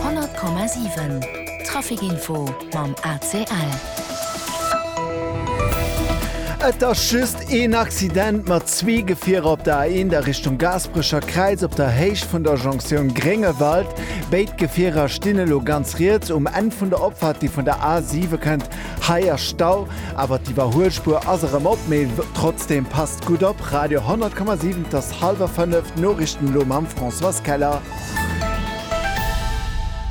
100,7 Traficinfo mam ACL. Et ass just een Accident mat zwee Gefierer op der A1 a Richtung Gaasperecher Kräiz op der Héicht vun der Jonktioun Gréngewald. Béid Gefierer stinn elo ganz riets um Enn vun der Opfahrt, déi vun der A7 kënnt. Hei ass Stau, awer d'Iwwerhuelspuer ass erëm op. Mee trotzdem passt gutt op, Radio 100,7. Halwer fënnef, d'Noriichten elo mam Françoise Keller.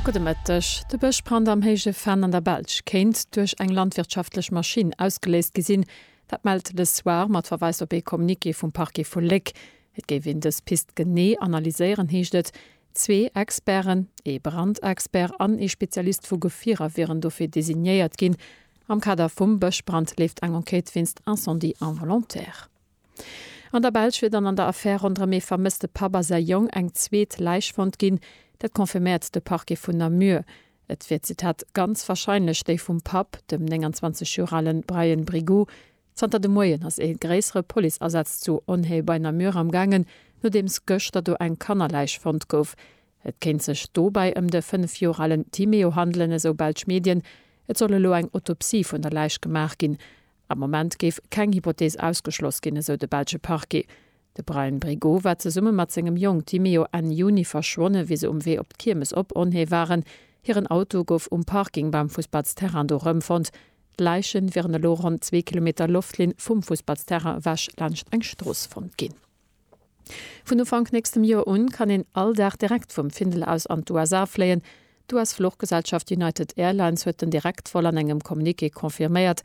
Gudde Mëtteg. De Bëschbrand am Héije Venn an der Belsch kéint duerch eng landwirtschaftlech Maschinn ausgeléist gi sinn. Dat mellt Le Soir mat Verweis op ee Communiqué vum Parquet vu Léck. Et géif een dës Pist genee analyséieren, heescht et. Zwee Experten, ee Brandexpert an ee Spezialist vu Gefierer wieren dofir designéiert ginn. Am Kader vum Bëschbrand leeft eng Enquête wéinst Incendie involontaire. An der Belsch wier dann an der Affär ronderëm ee vermësste Papp a säi Jong eng zweet Läich fonnt ginn. Dat confirméiert de Parquet vun Namur. Et wier, Zitat, ganz warscheinlech déi vum Papp, dem 29 Joer ale Brian Brigoux. Zanter de Moien ass ee gréissere Policeasaz zu Onhaye bei Namur am gaangen, nodeems gëschter do eng Kannerläich fonnt gouf. Et kéint sech dobäi ëm de fënnef Joer alen Timéo handelen, esou belsch Medien. Et soll elo eng Autopsie vun der Läich gemaach ginn. Am Moment géif keng Hypothees ausgeschloss ginn, esou de belsche Parquet. De Brian Brigot war zesumme mat sengem Jong Timeo Enn Juni verschwonne wéi se um Wee op d'Kiermes op Onhée waren. Hiren Auto gouf um Parking beim Fussballsterrain do rëmfonnt. D'Läiche wieren elo ronn zwee Kilometer Loftlinn vum Fussballsterrain ewech laanscht eng Strooss fonnt ginn. Vun Ufank nächstem Joer un kann een all Dag direkt vum Findel aus an d'USA fléien. D'US-Fluchgesellschaft United Airlines huet den Direktvol an engem Communiqué confirméiert.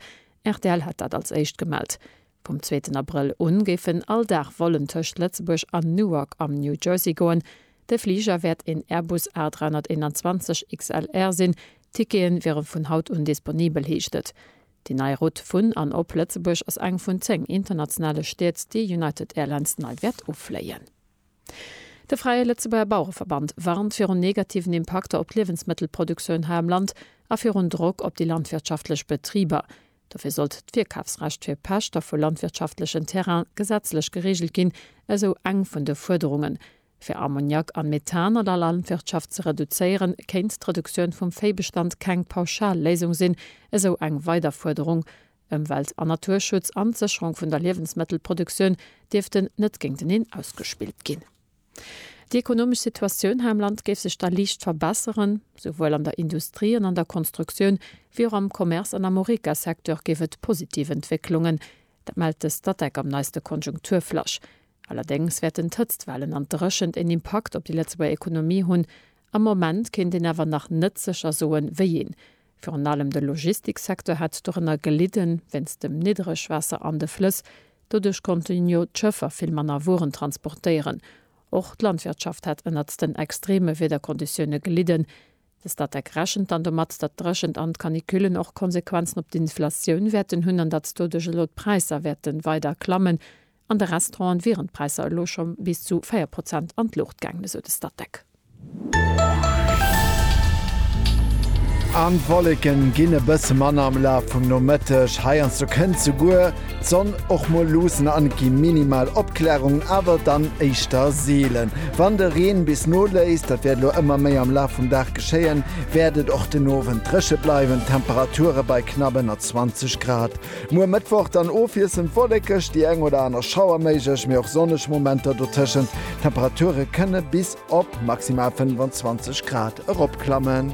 Rtl hat dat als éischt gemellt. Vum zweeten Abrëll u géifen all Dag Vollen tëscht Lëtzebuerg an Newark am New Jersey goen. De Fliger wäert een Airbus A321 XLR sinn. D'Tickete wiere vun haut un disponibel, heescht et. Déi nei Route vun an op Lëtzebuerg ass eng vun 10 internationale Stied, déi United Airlines nei wäert ufléien. De Fräie Lëtzebuerger Bauereverband warnt virun negativen Impakter op d'Liewensmëttelproduktioun hei am Land a virun Drock op déi landwirtschaftlech Betriber. Dofir sollt d'Virkafsrecht fir Pächter vu landwirtschaftlechen Terraine gesetzlech gereegelt ginn, esou eng vun de Fuerderungen. Fir Ammoniak an Methan an der Landwirtschaft ze reduzéieren, kéint d'Reduktioun vum Véibestand keng pauschal Léisung sinn, esou eng weider Fuerderung. Ëmwelt an Naturschutz an d'Sécherung vun der Liewensmëttelproduktioun dierften net géinteneen ausgespillt ginn. Déi ekonomesch Situatioun hei am Land géif sech da liicht verbesseren. Souwuel an der Industrie an an der Konstruktioun, wéi och am Commerce an am Horeca-Secteur géif et positiv Entwécklungen. Dat mellt de Statec am neiste Konjunkturflash. Allerdéngs wäerten d'Hëtztwellen an d'Dréchent een Impakt op déi Lëtzebuerger Ekonomie hunn. Am Moment kéint een awer nach net sécher soen, wéi een. Virun allem de Logistiksecteur hätt dorënner gelidden, wéinst dem Niddregwaasser an de Flëss. Doduerch konnten jo d'Schëffer vill manner Wueren transportéieren. Och d'Landwirtschaft hätt ënnert den extreme Wiederkonditioune gelidden. De Statec rechent dann domat, datt d'Dréchent an d'Canicullen och Konsequenzen op d'Inflatioun wäerten hunn an datt doduerch elo d'Präisser wäerte weider klammen. An de Restauranten wieren d'Präisser elo scho bis zu 4 Prozent an d'Luucht gaangen, esou de Statec. An d'Wolleken ginn e bësse manner am Laf vum Nomëtteg. Heiansdo kënnt souguer d'Sonn och mol luussen an et gi minimal Opklärungen, awer dann éischter seelen. Wann de Reen bis noléisst, dat wäert elo ëmmer méi am Laf vum Dag geschéien, wäert et och den Owend dréche bleiwen, d'Temperature bei knapp ënner 20 Grad. Muer Mëttwoch dann ofwiesselnd wollekeg, déi eng oder aner Schauer méiglech, mee och sonneg Momenter dotëschent. D'Temperature kënne bis op maximal 25 Grad eropklammen.